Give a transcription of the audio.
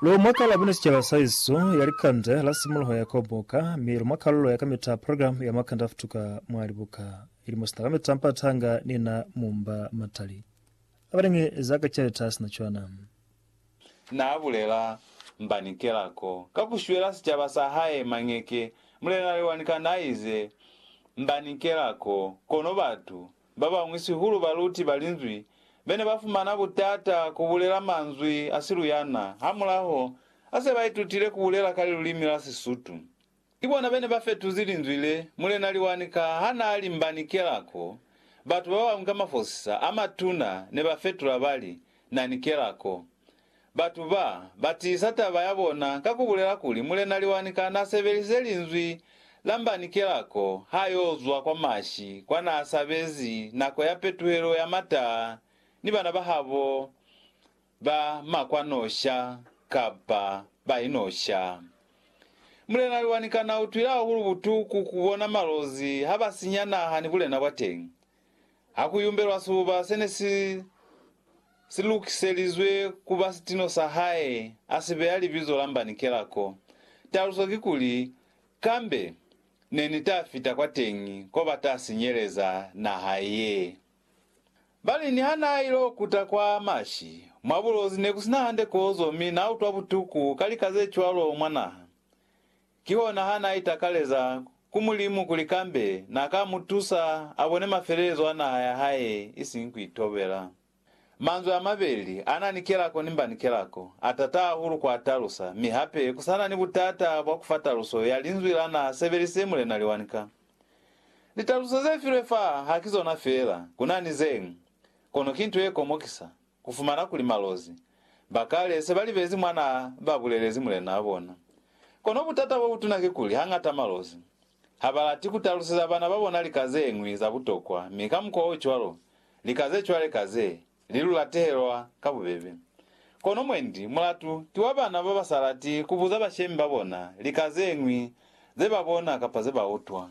Lu mwa kalabo ni sicaba sa isu ya likande la simuluho ya koboka, mi lu mwa kalulo ya kamita ya program ya makande a futuka mwa libuka, ili musina kamita mpata hanga ni na mu mba matali a balingi za ka caleta a sina cwana. Na bulela, Mba ni kela ko ka ku shwela sicaba sa hae mañeke. Mulena Lewani Kanda a ize, Mba ni kela ko, kono batu Ba bañwi sihulu baluti ba Linzwi be ne ba fumana butata ku bulela manzwi a siluyana hamulaho ha se ba itutile ku bulela ka lilulimi la Sisutu. Ki bona be ne ba fetuzi linzwi le Mulena Liwanika ha n'a limbani kelako. Batu ba bañwi ka mafosisa a matuna ne ba fetula ba li, Na ni kelako. Batu ba, ba tiisa taba ya bona ka ku bulela kuli Mulena Liwanika n'a sebelise linzwi la mbanikela ko ha y'o zwa kwa Mashi kwa n'a sabezi nako ya petuhelo ya mataa ni bana ba habo ba makwanosha kapa ba inosha. Mulena Liwanika n'a utwile hahulu butuku ku bona malozi ha ba sinya naha ni bulena bwa teñi. ha ku yumbelwa sibuba se ne si si lukiselizwe ku ba sitino sa hae, a si beya libizo la Mbanikela ko. Taluso kikuli, Kambe ne ni ta fita kwateñi ko ba ta sinyeleza naha ye. Ba li niha n'a il'o kuta kwa mashi, mwa bulozi ne ku si na hande kozo mi n'a utwa butuku ka lika ze cwalo mwa naha. Kihona ha n'a itakaleza ku Mulimu kuli kambe n'a ka mu tusa a bone mafelelezo a naha ya hae isiñi ku itobela. Manzwi a mabeli a na ni kelako ni mba ni kelako, a tata hahulu ku a talusa, mi hape ku sa na ni butata bwa ku fa taluso ya linzwi la n'a sebelisize Mulena Liwanika. Litaluso ze filwe fa ha ki zona fela, ku na ni ze ñwi, kono ki nto ye komokisa. Ku fumana kuli malozi ba kale se ba libezi mwa n'a ba bulelezi mulen'a bona. Kono butata bo butuna kikuli hañata malozi ha ba lati ku taluseza bana ba bona lika ze ñwi za butokwa mi ka mukwa o cwalo lika ze cwale ka ze li lu latehelwa ka bubebe. Kono mwendi mulatu ki wa bana ba ba sa lati ku buza bashemi ba bona lika ze ñwi ze ba bona kapa ze ba utwa.